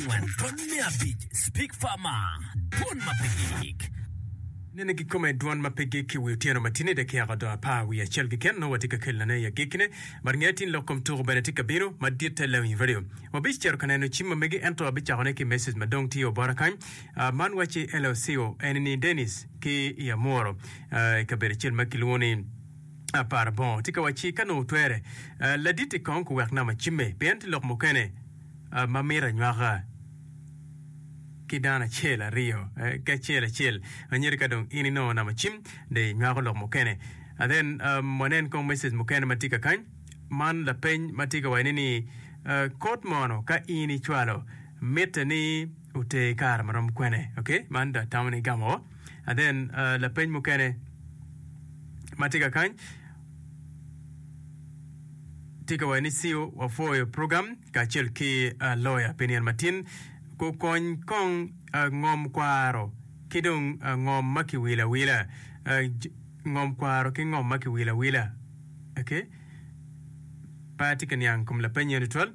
angwen dwon me abic speak far ma dwon ma pe gik. Nene kikome dwon ma pe gik i wi otyeno ma tini dakiaka odo apar wiye acel keken nongo watye ka kelone i agikkine but nge tin lok kom tuku bene tye ka bino maditte leo in radio wabic cito ka neno cim ma mege ento abicako ne ki message ma dong tye obota kany ah man wacci LLCO eni ni Dennis ki i Amworo ah i kabedo acel ma kilwongo ni Aparabongo tye ka wacci ka nongo twere ah laditti kong ku wek nama cimme pien tye lok mukene ma mito anywaka ki dano acel aryo ki acel acel anyira ka dong in inongo namba cim dong inywako lok mukene and then um, wanen kong message mukene ma tye ka kany man lapeny ma tye ka wacone ni uh, kod mono ka in icwalo mitte ni oter kare marom kwene okay man da tamo ni gamo and then uh, lapeny mukene ma tye ka kany Tye ka wacone ni Siu wapwoyo program kacel ki loya pi nino matin. Kukony kong ngom kwaro ki dong ngom ma kiwilo awila. Ngom kwaro ki ngom ma kiwilo awila. Okay. Pe atye ka niang kom lapeny eni tutwal.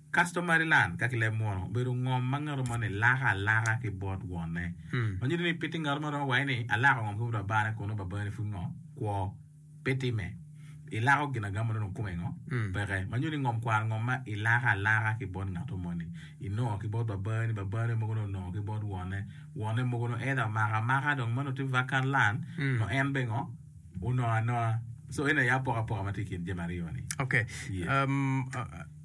Kasto Maryland ka ki leb munu obedo ngom ma ngato moni lako alaka ki bot wonne. Ma nyuto ni pe tye ngato ma romo waci ni alako ngom ki bot babane kono babane pud ngo? Kwo. Pe timme. Ilako gin agam ma nongo kome ngo? Peke. Ma nyuto ni ngom kwar ngom ma ilako alaka ki bot ngato moni. Inongo ki bot babani, babane mogo ni onongo ki bot wonne, wonne mogo ni either omako amaka dong meno tye vacant land nyo en bene ngo? Onongo anoa. So eni aye apokapoka ma tye i kin jami aryo ni. Okay. Yeah. Um, uh, uh.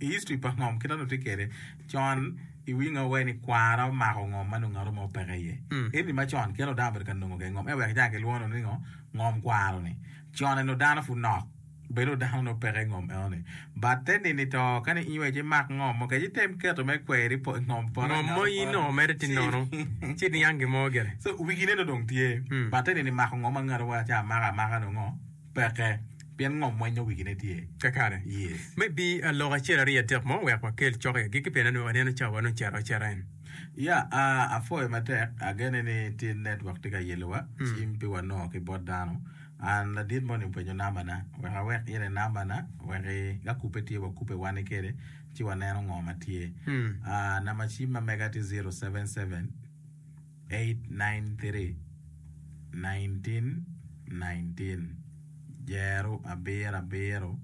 I history pa ngom kit ma nongo tye kwede con i wing nongo iwaco ni kwara omako ngom ma nongo ngat mo peke iye. Eni ma con kit ma dano obedo ka nongo kwede ngom en wek ejang kilwongo nongo ni ngo ngom kwaro ni. Con eni nongo dano pud nok bed nongo dano nongo peke i ngom eno ni but te nini to ka ni in wek imak ngom mo kec item keto me kweri po i ngom poto Ngom mo in nongo mere tye nono ci niang gin mo gire. So wigine nongo dong tye but te nini mako ngom ma ngat mo waco amaka amaka nongo ngo. Peke, pien ngom mwenyo wigine tye kakare. Me bi a lok acel aryo adek mo wek wakel cok i agikki pien anongo aneno cawa wa nongo cito acita en. Ya a apwoyo matek, agene ni ti network ti ka yelo wa cim pi wa noo ki bot dano. An ladit moni mpwenyo namba na, wek awek in e namba na wek i ka kubbe tye wa kubbe wani kede ci wa neno ngo ma tye. A namba cim ma mega ti zero seven seven. 1919 Jeru abiro abiro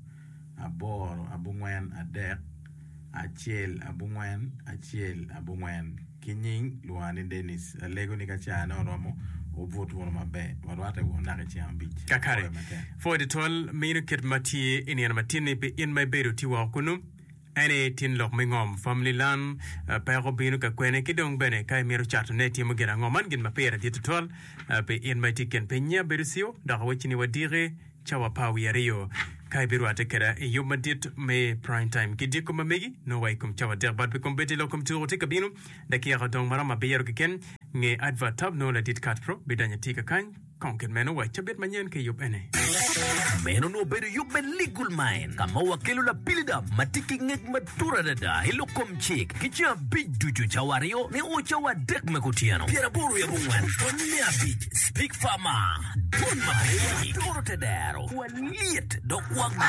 aboro abongwen adek acel abongwen acel abongwen ki nying lwongo ni Denis alego ni ka car ne oromo wubut wunu maber warwate wunu naka i ceng abic kakare. Pwod twal meno kit ma tye i nino matinni pi in ma ibedo tye woko kunu. En aye tin lok me ngom, famili lan, peko bino ka kwene, ki dong bene ka imito catone itimo gin ango. Man gin ma pire dit tutwal pi in ma itye i kin piny. Nyi abedo ciu, dok awecci ni wadiki cawa pa wiye aryo. Ka ibirwatte keda i yub madit me Prime Time ki dyekkom ma megi, nongo wa i kom cawa adek bad pe kombeddi lok kom tuku tye ka bino. Dakika odong maromo abiro keken. Nge advert tab nongo ladit Cutthroat bidonyo atika kany. Kong kit meno wa cabit manyen ki yub ene. Meno onongo bedo yub me Legal Mind ka ma wakelo lapilida ma tye ki ngec matut adada i lok kom cik ki ceng abic ducu, cawa aryo nio cawa adek me kutyeno. Pyeraboro yabo ngwen pwony me abic Speak Farmer Don Marini turo te dero wa lyet dok wa gwa.